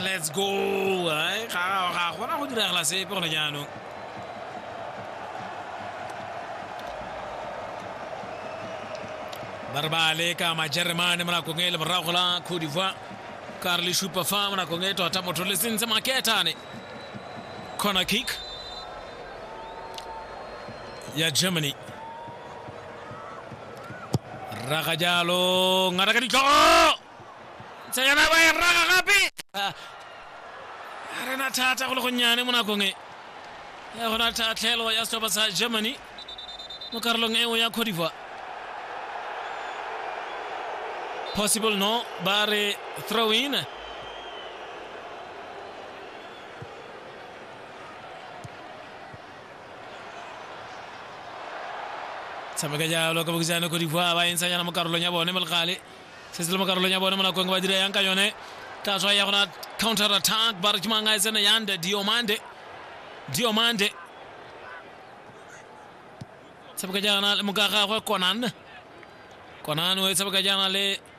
let's go Ai, ga ga gona go diragala sepe gone jaanong ba re ba leka majeremane mo nakong e le morago la cote d'ivoire ka re le supa fa mo nakong e tota motho le sentse maketane corner kick ya germany Raka jalo, ngata ka ditlhogo. Tsayana ba e raka gape. Ah, A re na thata go le gonnyane mo nakong e. Ya gona tlhatlhelo ya setlhopha sa Germany mo karolong eo ya Cote d'Ivoire. Possible no, ba re throw in. tshameka jalo ka bokisane ko dikgwa ba entshanyana mo karolong ya bone mo legale se se le mo karolong ya bone mo nakong ba dira yang ka yone ka tswa ya gona counter attack ba re ke mang a e tsena yande diomande diomande tshameka jaana le mokagagwe konan konan o e tshameka jaana le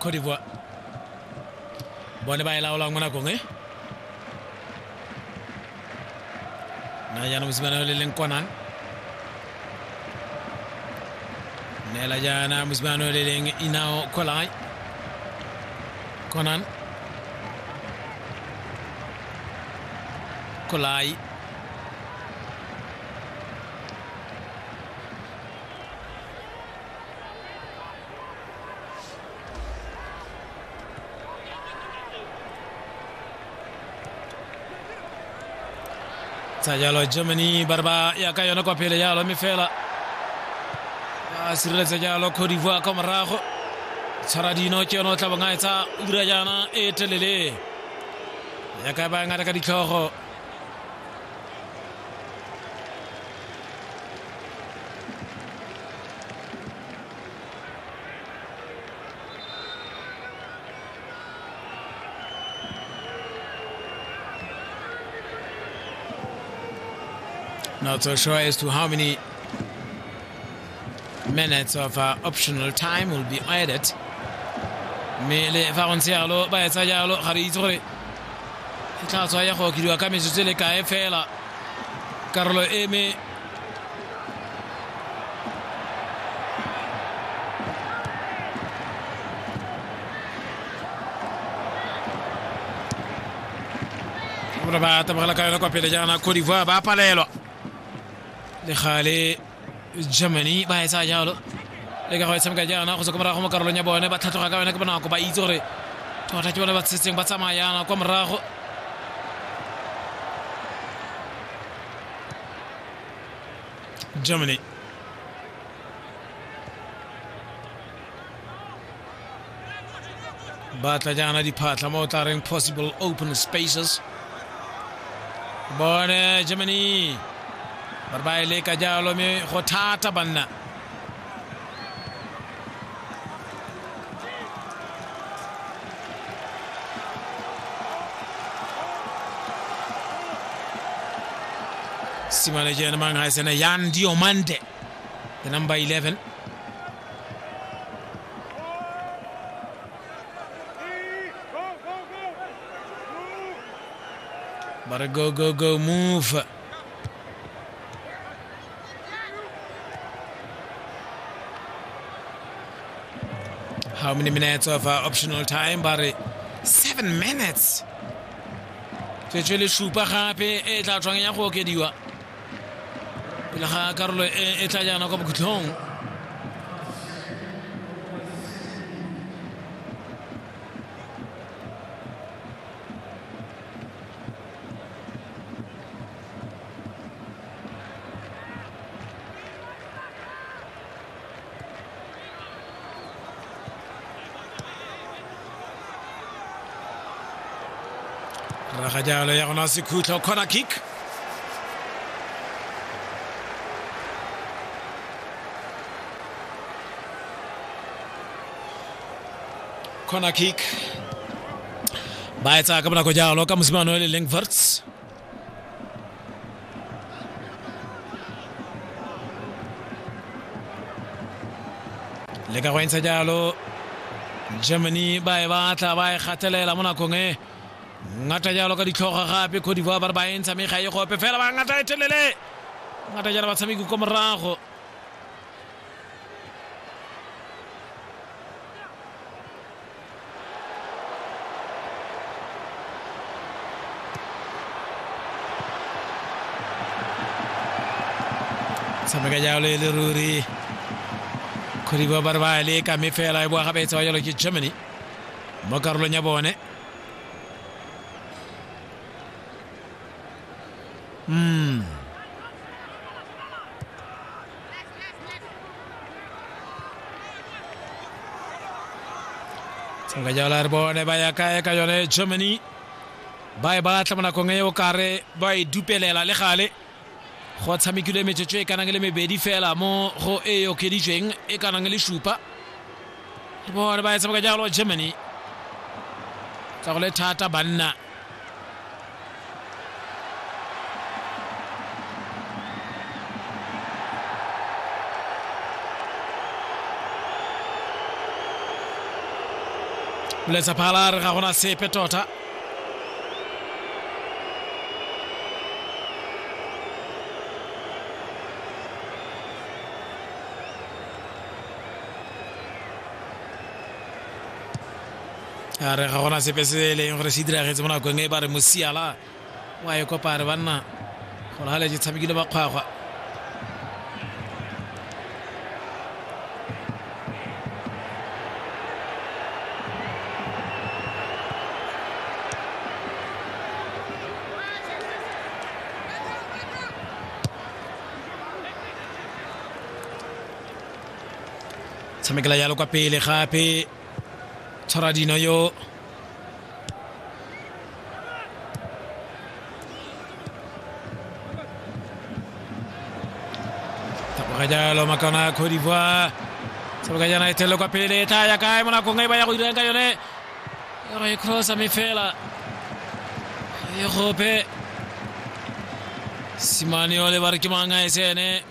cote d'ivoire bone ba e laolang mo nakong e na jaanong mosimane yo le leng kwanang neela jaana mosimane yo le leng inao kolai konan kolai tsa jalo germany ba re ba ya ka yone kwa pele jalo mme fela ba sireletsa jalo cote d'ivoire ka morago tshwara dino ke yone o tla bong a etsa ura jaana e telele ya ka ba ngata ka ditlhogo Not so sure as to how many minutes of uh, optional time will be added. mme le fa go ntse yalo ba etsa jalo ga re itse gore e tla tswa ya go okediwa ka metsotso e le kae fela karolo e me Muna ba ta magana kayo na kwafe da jana Cote d'Ivoire ba pala yalo. Da khale Germany ba ya sa jalo. Le ka go tshameka jana go se komara go mo karolo nya bone ba tlhatloga ka yone ke bonako ba itse gore tota ke bone ba tsetseng ba tsamaya yana kwa morago Germany. ba tla jaana diphatlha mo o tla reng possible open spaces bone germany ba re ba e leka jalo mme go thata banna simane jeena ma ngai sene yan dio mande the number 11 bara go go go move How many minutes of uh, optional time? Ba re seven minutes. Tswetswe le supa gape e tla tswang ya go okediwa. Pele ga karolo e e tla jaana kwa bokhutlhong. rraga jalo ya gona sekhutlo corner kick corner kick ba etsa ka bonako jalo ka mosimane o le leng verts le ka go entsha jalo germany ba e batla ba e gatelela mo nakong e ngata jalo ka ditlhoga gape codivoire ba re ba entsha mme ga e gope fela ba ngata e telele ngata jalo batshameki ko morago Sa me ka jalo e le ruri kgodibo ba re ba le ka me fela e boa gape e tsewa jalo ke germany mo karolong ya bone mm. tshimolola jaana re bone ba ya kae ka yone germany ba e batla mo nakong e o kare ba e dupelela le gale go tshamekilwe metsotso e kanang le mebedi fela mo go e e okeditsweng e kanang le supa re bone ba e tshameka jalo germany tsa go le thata banna letsa phala re ga gona sepe tota a re ga gona sepe se e leng gore se diragetse mo nakong e ba re mosiala wa e kopa re banna gore ga le je tshamekile bakgwagwa tshamekela jalo kwa pele gape tshwara dino yo taboga jalo makana ya cote d'ivoire taboga jana e telele kwa pele e tla ya kae mo nakong e ba ya go dirang ka yone e re e crossa me fela e gope simane ole ba re ke mangwe a e sene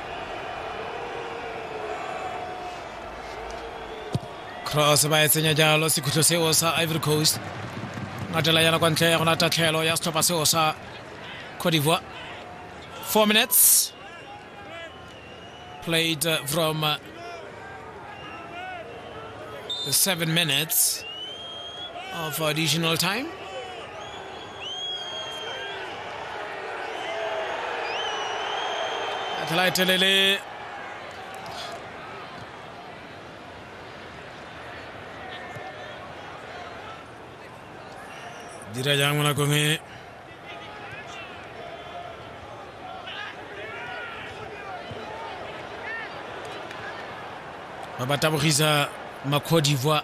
cross ba e tsenya jalo sekhutlo seo sa ivory coast ngatela yana kwa ntle ya gona tatlhelo ya setlhopha seo sa cote d'ivoire four minutes played uh, from uh, the seven minutes of additional time Tla e telele dira jang mo nakong e ba ba tabogisa ma Cote d'Ivoire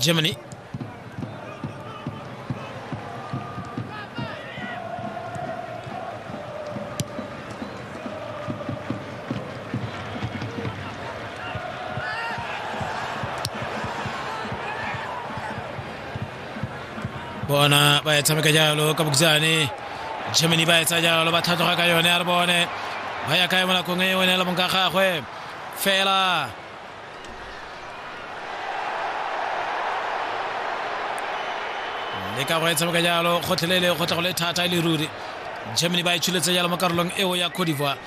Germany bona ba e tshameka jalo ka bokisane germany ba e tsa jalo ba thatloga ka yone a re bone ba ya kae mo nakong e yone le mong ka gagwe fela le ka go e tshameka jalo gotlhelele go tla go le thata e le ruri germany ba e tshuletse jalo mo karolong eo ya cote d'ivoire